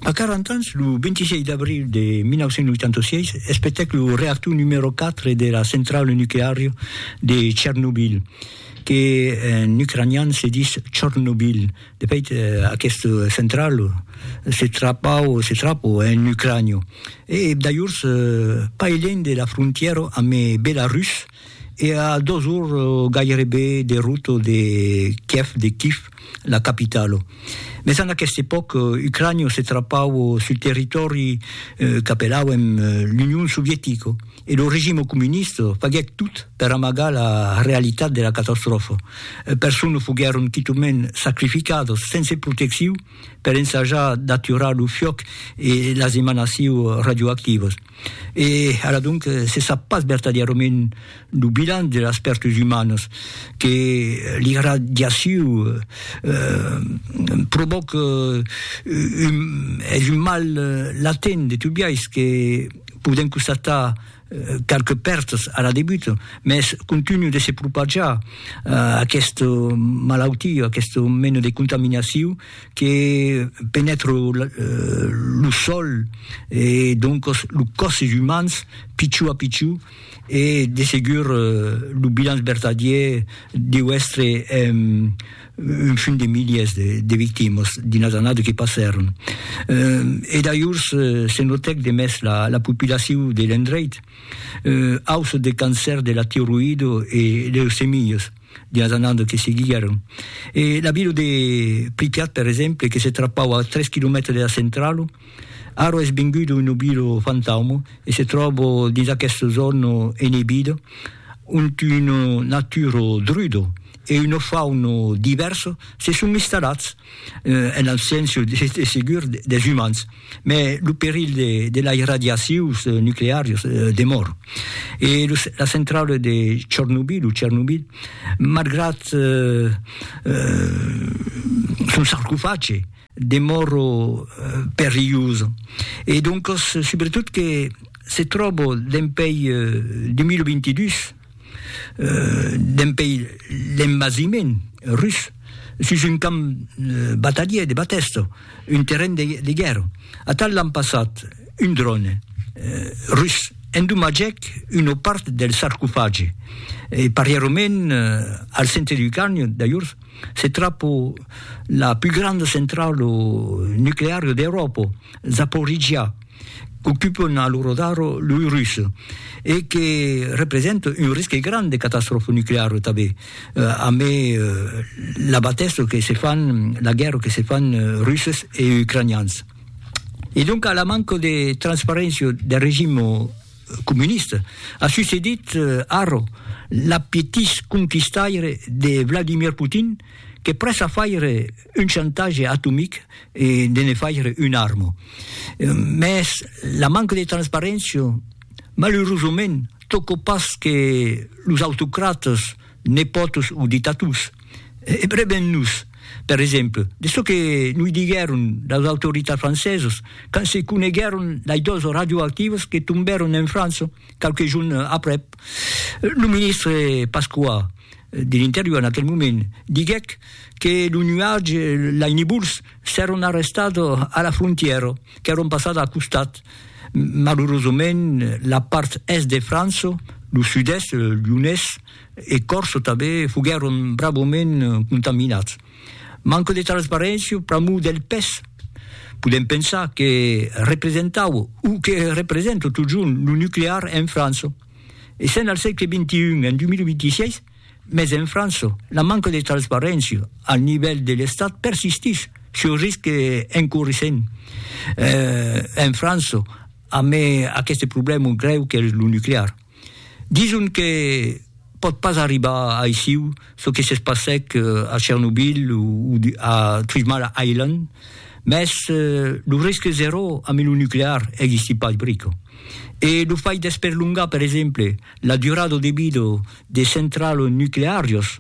A 40 ans, lo 26 d'abril de 1986, espetèc lo reactor numèro 4 de la centrala nucleària de Chernobyl, que en ucranian se ditz Chornobyl. De fait, aquesta centrala se trapau, se trapo, en Ucrània, e dajors pas elènh de la frontièra amb Belarus, E a dos ors gairebe de rota de Kièv, de Kif, la capitala. Mès en aquesta epòca, Ucrània se trapava sul territòri qu'apelàuem l'Union Sovietica e lo regime comunista faguèt tot per amagar la realitat de la catastròfa. Personas foguèron quitament sacrificadas sense proteccion per ensajar d'aturar lo fiòc e las emanacions radioactivas. E ara donc se sap pas vertadièrament lo bilan de las pèrtas umanas que l'irradiaciu provòca, es un mal latent de tot biais que podèm constatar qualques pèrtas ara debuta, mès continua de se propajar aquesta malautia, aquesta mena de contaminaciu. que penètre lo sòl e doncos lo còsses umans pichó a pichó e de segur lo bilanç vertadièr deu èstre un fum de milièrs de victimas dins las annadas que passèron e dajors se notèc de mès la populacion de l'endreit ausa de cancèr de la tiroïda e leucemias. Dias anando que seguiguèron. E la vila de Pripyat, per exemple, que se trapau a tres quilomètres de la centralo, ara es venguda una vila fantauma e se tròba dins aquesta zòna enebida, ont una natura druda e una fauna divèrsa se son instalats. en abséncia de segur des umans, mai lo perilh de lai radiacius nuclearius demòr. E la centrala de Chornobyl o Chernobyl, malgrat son sarcofage, demòr perilhosa e doncas subretot que se tròba dempèi 2022, Dempèi l'envasiment rus, sus un camp batalhier de Batèsto, un terren de guèrra, atal l'an passat un dròne rus endomatgèc una part del sarcofagi e parièrament al centre du carni d'ajorn se trapa la pus granda centrala nucleara d'Euròpa, Zaporizhia. qu'ocupon a lo rodar loi rus e que represente un risque grand de catastròfa nucleara tanben, ambe la batèssa que se fan, la guèrra que se fan russes e ucranians. E doncas la manca de transparéncia del regim comunista a succedit ara l'apetís conquistaire de Vladimir Putin que prèssa faire un chantatge atomic e de ne faire una arma. Mès la manca de transparéncia, malurosament, tòca pas que los autocratas, nepòtos o dictators. E breben nos, per exemple, de çò que noi diguèron las autoritats francesas quand se coneguèron las dòzas radioactivas que tombèron en França qualques jorns aprèp lo ministre Pasqua de l'interior en aquel moment diguèc que lo nuatge, lai nibuls, s'èron arrestats a la frontièra, qu'èron passats al costat. Malurosament, la part èst de França, lo sud-èst, Lyonés e Còrse tanben, foguèron bravament contaminats. Manca de transparéncia pr'amor del pes. Podèm pensar que representaue o que representa totjorn lo nuclear en França. e sèn al sègle XXI, en 2026, mès en França, la manca de transparéncia al nivèl de l'Estat persistís, çò risc que encourissèm eh, en França, amé aqueste problèma grèu qu'es lo nuclear. Dison que pòt pas arribar aissiu çò que se passèc a Chernobyl o a Three Mile Island, mès lo risque zeró amb lo nuclear existí pas brico. E lo fai d'esperlongar, per exemple, la durada de vida de centrals nucleàrios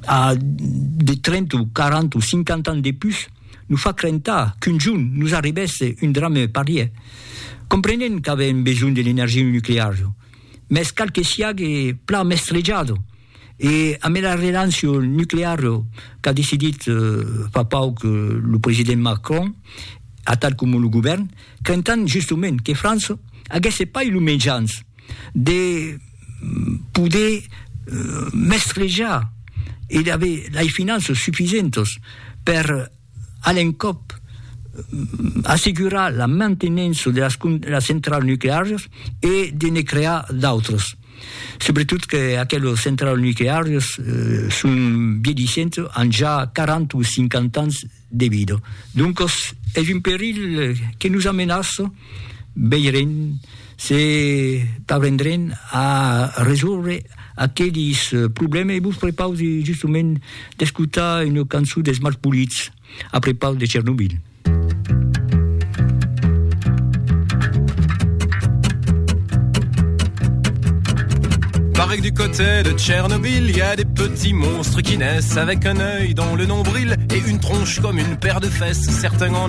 a de 30 o 40 o 50 ans de pus nos fa crentar qu'un jorn nos arribèsse un drame parièr. Comprenèm qu'avèm besonh de l'energia nucleària, mès cal que siague plan mestrejado e amb era relancion nucleara qu'a decidit fa pauc lo president Macron, atal coma lo govèrn, crentan justement que França aguèsse pas lo mejans de poder mestrejar e d'aver lei finanças sufisentas per a l'encòp assegurar la mantenença de las, de las centrals nucleàrias e de ne crear d'autras. Subretot que aquelas centrals nucleàrias son viedissent, an ja 40 o 50 ans de vida. Doncas es un perilh que nos amenaça. veirem se parvendrem a resòrver aquelis problèmes e vos prepausi justament d'escotar una cançon dels Malpolits a prepaus de Chernobyl. Pareil du côté de Tchernobyl, il y a des petits monstres qui naissent avec un oeil dans le nombril et une tronche comme une paire de fesses, certains en